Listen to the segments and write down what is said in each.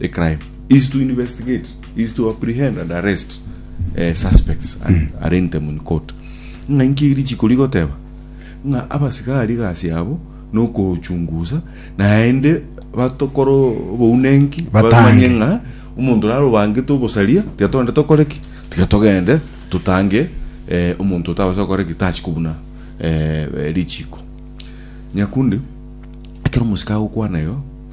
a crime is to investigate is to apprehend and arrest uh, suspects and mm. arraign them in court ng'a inki erichiko rigoteba ng'a abasigari gasi abo nokochungusa naende batokora obounenki bamanye ng'a omonto raro bangete obosaria tiga tonde tokore ki tiga togende tutange eh, omonto otabasa gokora ki tachi kobuna eh, richiko nyakundi ekero omusika agokwana yo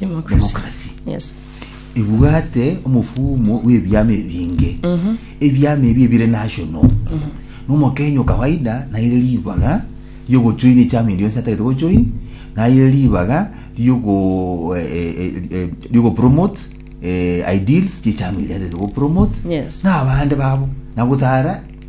Democracy. Yes. ebwate omofumo bw'ebiama ebinge ebiama ebi ebire national nomokenya okawaida naire ribaga riogochoini echiama endi yonsi atagete gochoini naire ribaga riogo eh, eh, eh, eh, riogopromote eh, ideals chi'echiama eria atagete gopromote Yes. na abande babo nagotara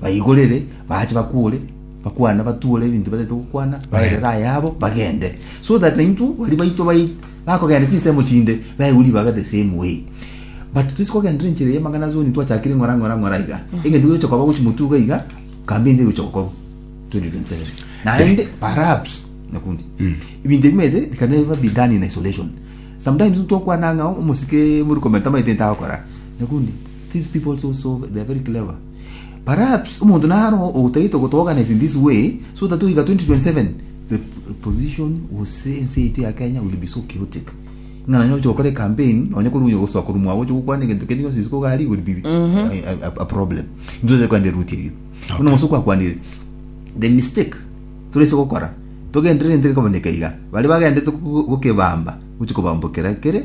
Baigorere, bache bakwore, bakwane, batuore ebinto batete gokwana, baerere ayabo, bagende. So that naintwe, baria baitwe bai- bakogenda chinsemo chinde, baigwe ribaga the same way. But toise kogendera enchera ya amang'ana ase omonto twachakire ng'ora ng'ora ng'ora iga. Egento gegocha koba gochi motuga iga, campaign teri gocha gokorwa. 2027. Naende, perhaps, nyakundi, ebinto ebi maete, it can never be done in isolation. Sometimes intwe tokwana ng'a omosike morikoment tamaete intagokora. Nyakundi, these people so so, they are very clever. Perhaps omonto naro otagete gotoorganize in this way so that oiga 2027 the position was say ense yaito ya Kenya will be so chaotic ng'a nonye oche gokora campaign nonye korwa onye gosoa korwa mwabo oche gokwana egento kende gionsi isiko gari will be a, a, a, a problem intwe totari kwenda eruti erio buna onse okwakwanire the mistake torese gokora togenderere entege koboneka iga bare bagendete go- gokebamba gochi kobambokera kere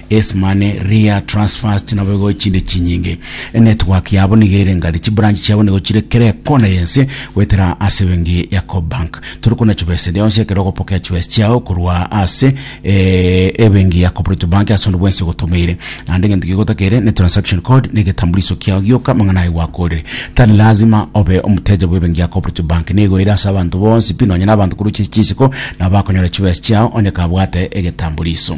Ace Money, Ria, Transfast nabo igo chinde chinyinge. Enetwork yabo niga ere ngari, chibranch chiabo nigo chire kera ekona y'ense goetera ase ebenki ya Cobank. Tore kona chibesa eria yonsi ekero ogopokea chibesa chiao korwa ase eh, ebenki ya Cooperative Bank ase onde bwensi ogotomeire. Naende egento kiago otakere ne transaction code na egetambuliso kiao gioka amang'ana aye gwakorire. Tari lazima obe omoteja bw'ebenki ya Cooperative Bank. Nigo ere ase abanto bonsi pi nonya na abanto korwa chiri chisiko nabo bakonyora chibesa chiao onye kabwate egetambuliso.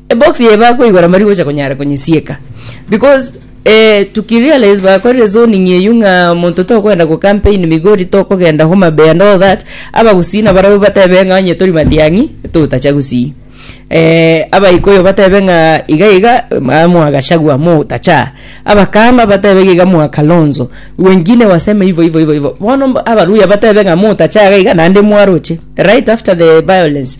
Ebox eye bakoigora mbari gocha konyara konyisieka because eh, tukirealize bakorire zoning eyio ng'a monto tokwenda go campaign migori tokogenda homa bay and all that abagusii na barabo batebe ng'a onye tori matiang'i totacha gusii eh, abaikoyo batebe ng'a iga iga ma- mwagashagwa motacha abakamba batebe iga iga mwakalonzo wengine waseme hivyo hivyo hivyo hivyo bono mb- abaruya batebe ng'a motacha iga iga naende mwaroche right after the violence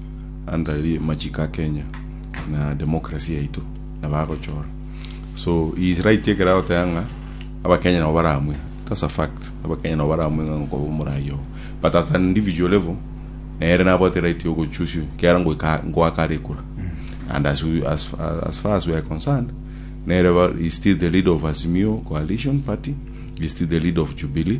Andari machiko a Kenya na democracy yaito na bagochora so he is right ekero agoteba ng'a abakenya nabo baramwe that's a fact abakenya nabo baramwe ng'a nkoba omoraia oo but at an individual level nere nabwate right yo gochoose kiara ngoika ngoaka are ekura and as, we, as, as far as we are concerned nere ba, is still the leader of Azimio coalition party is still the leader of Jubilee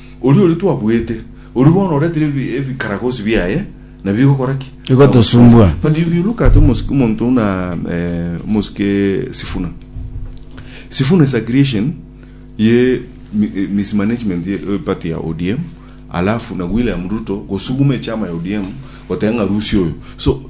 Oria oria twabuete, oria bono oretire ebikaragosi biaye, na bigokora ki? Bigotosumbua. But if you look at omosike omonto buna eh, omosike Sifuna. Sifuna is a creation ye mi- eh, mismanagement ye eh, party ya ODM alafu na William Ruto gosuguma echama ya ODM goteba ng'a rusia oyo. So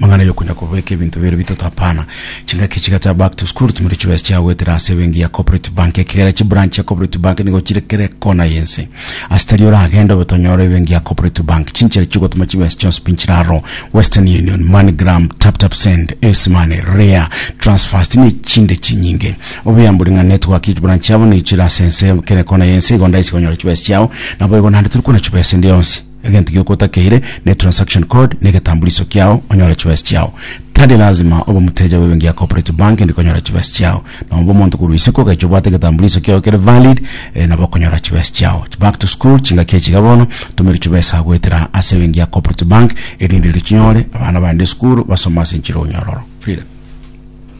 Mang'ana yokonya kobeka ebinto biaino bitato hapana. Chingaki chiga chia back to school timori chibesa chiagoetera ase ebenki ya Cooperative Bank. Ekegera chibranch chia Cooperative Bank nigo chire kera ekona y'ense. Ase tari oragende obe tonyora ebenki ya Cooperative Bank. Chinchera chi'ogotoma chibesa chionsi pi nchire aro, Western Union, MoneyGram, TapTapSend, Ace Money, Ria, Transfast na echinde chinyinge. Obuya mbori ng'a network ye chibranch chiabo nigo chire ase ense kera ekona y'ense igo ndaise konyora chibesa chiao. Naboigo naende tori kona chibesa endi yonsi. Egento gioka otakeire ne transaction code na egetambuliso kiao onyore chibesa chiao. Tari lazima obe omoteja bw'ebenki ya Cooperative Bank inde konyora chibesa chiao. Nobobe omonto korwa isiko ogacha obwate egetambuliso kiao kere valid eh, nabo okonyora chibesa chiao. Back to school chingaki echi iga bono, tumeri chibesa goetera ase ebenki ya Cooperative Bank erinde richinyore abana bande esukuru basome ase enchera onyororo. Freedom.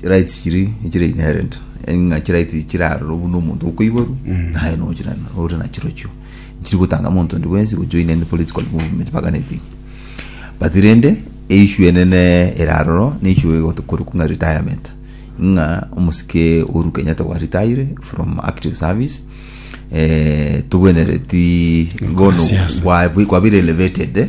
chirights chiri echire inherent ng'a chirights echi chiraroro buna omonto okoiborwa naye nochira ore nachirochio nchiri gotanga monto onde bwensi gojoina any political movement mpaka anything but rende eissue enene ere aroro ne issue egoto- korokwa ng'a retirement ng'a omosike Uhuru Kenyatta gwa retire from active service eh, tobwenereti bono Siasa. kwa- kwabeire elevated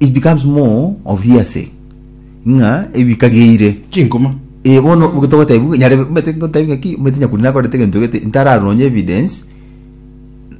It becomes more of hearsay ng'a ebi bikageire. Chinkuma. Eh, bono oboke togotebi ng'a nyare omanyete ngotebi ng'a ki omanyete Nyakuri nakorete egento egete ntararonye evidence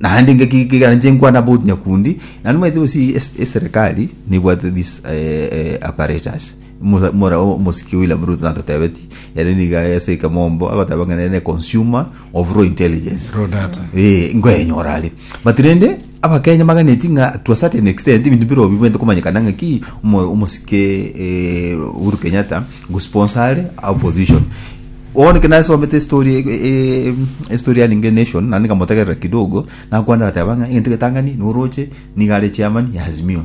naende ng'aki kegera ninche nkwane about Nyakundi naende omanyete gose es- eserekari nebwate this eh, eh, apparatus Mosa- mora o- omosike William Ruto natotebetie ere niga ase ekamombo agoteba ng'a nere ne consumer of raw intelligence Raw data. eh, nkoyenyora are but rende Abakenya baganeti ng'a to a certain extent ebinto bire obi bwente komanyekana ng'a ki omo- omosike eh, Uhuru Kenyatta gosponsare a opposition bono ke nasomete story e- e- e- story ya Linge Nation naende nkamotegerera kidogo nakwana agateba ng'a egento getang'ani noroche niga are chairman ya Azimio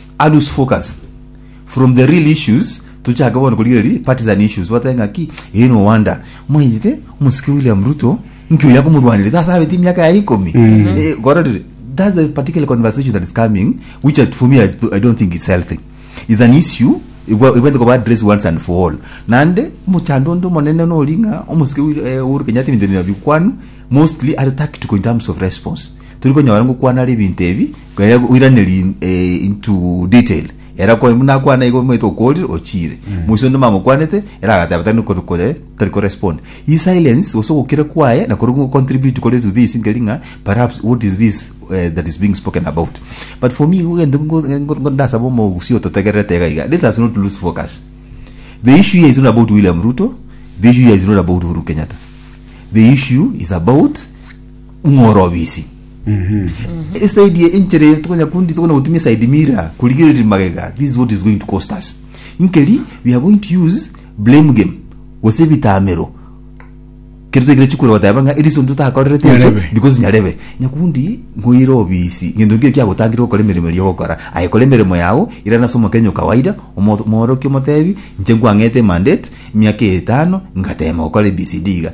A loose focus from the real issues tochake bono korigereria partisan issues batebe ng'aki eh no wonder mwaigete omosike William Ruto inki oyo akomorwanire sasa abete emiaka yaye ikomi Eh, kororire that's the particular conversation that is coming which I- for me I, do- I don't think it's healthy is an issue igwa- ibwete koba address once and for all nande omochando onde omonene nori ng'a omosike Wil- eh, Uhuru Kenyatta ebinto bino bikwanu mostly are tactical in terms of response turi konyora ngokwana ari ebinto ebi Kere goiraneria in- eh, into detail ere akwa buna akwana igo omanyete okorire ochiire moise onde mamokwanete ere agateba tari kore kore tari ko respond hii silence gose ogokira kwaye nakore go contribute kore to this nkeri ng'a perhaps what is this eh, that is being spoken about but for me igo egento ngo- ngo- ngo- ndasaba omogusii ototegererete iga iga let us not lose focus the issue here is not about William Ruto the issue here is not about Uhuru Kenyatta the issue is about ng'orobisi esaidi ye enchera eyo tokonya kundi tokonya gotumia side mirror kurigereria magega this is what is going to cost us inkeri we are going to use blame game gose ebitamero kero twekire chikure goteba ng'a eriso nto takorerete eke, Nyarebe. because nyarebe nyakundi ngoire obisi ngento nkio kiagotangire gokora emeremo eria ogokora aye kora emeremo yao irana ase omokenya o kawaida omo- omorokia omotebi inche nkwang'ete emandate emiaka etano ngatema gokora abcd iga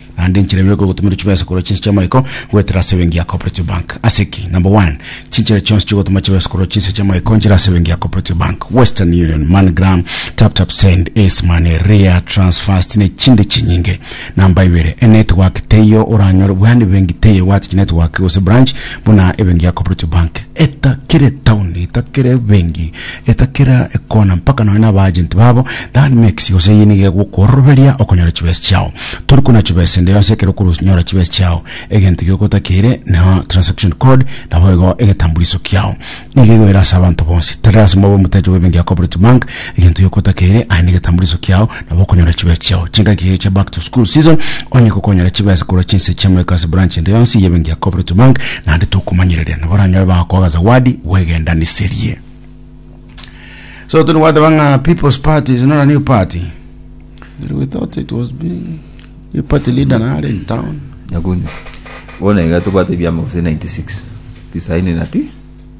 Naende enchera ime ekogotomerwa chibesa korwa chinse chi'amaiko goetera ase ebenki ya Cooperative Bank. Ase ki? Number one, chinchera chionsi chi'ogotoma chibesa korwa chinse chi'amaiko nchire ase ebenki ya Cooperative Bank, Western Union, MoneyGram, TapTapSend, Ace Money, Ria, TransFast na echinde chinyinge. Number ibere, enetwork teiyo oranyore bwane ebenki teiyo ebwate chinetwork gose branch buna ebenki ya Cooperative Bank. Eta kera etown, eta kera ebenki Eta kera ekona mpaka nonya na abaajenti babo, Than makes gose eyio nigo egokworoberia okonyora chibesa chiao. Tori kona chibesa ende yonsi ekero okoronyora chibesa chiao. Egento ekio ogotakeire neo transaction code naboigo egetambuliso kiao. Nigo egoira ase abanto bonsi. Tari lasima obe omoteche bw'ebenki ya Cooperative Bank, egento giokotakeire aye negetambuliso kiao. Nabo okonyora chibesa chiao chingaki eyo chia back to school season, onye gokonyora chibesa korwa chinse chia Mwekasi Branch ende yonsi y'ebenki ya Cooperative Bank, naende tokomanyereria nabo oranyore bagokoa agasawadi bw'egendaniserie. So toni gwateba ng'a People's Party is not a new party. Really, we thought it was being new party leader nare in town. nyakunyu bono iga tobwate ebiama gose 96 tisaini na ti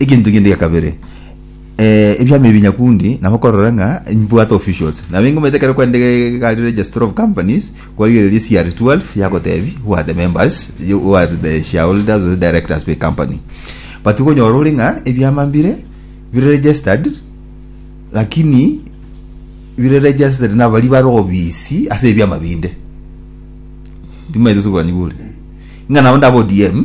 Egento kende gia kabere, eh, ebiama ebi nyakundi nabo korora ng'a mbwate officials. Nabo ingomete ekero kwende gari registry of companies, kwarigereria CR12 yagotebi bwate members, you who are the shareholders or the directors be company. But okonyora ore ng'a ebiama mbire bire registered lakini bire registered nabari bare obisi ase ebiama binde. Timaete sokobanyigure. Ng'a nabo ndabe ODM,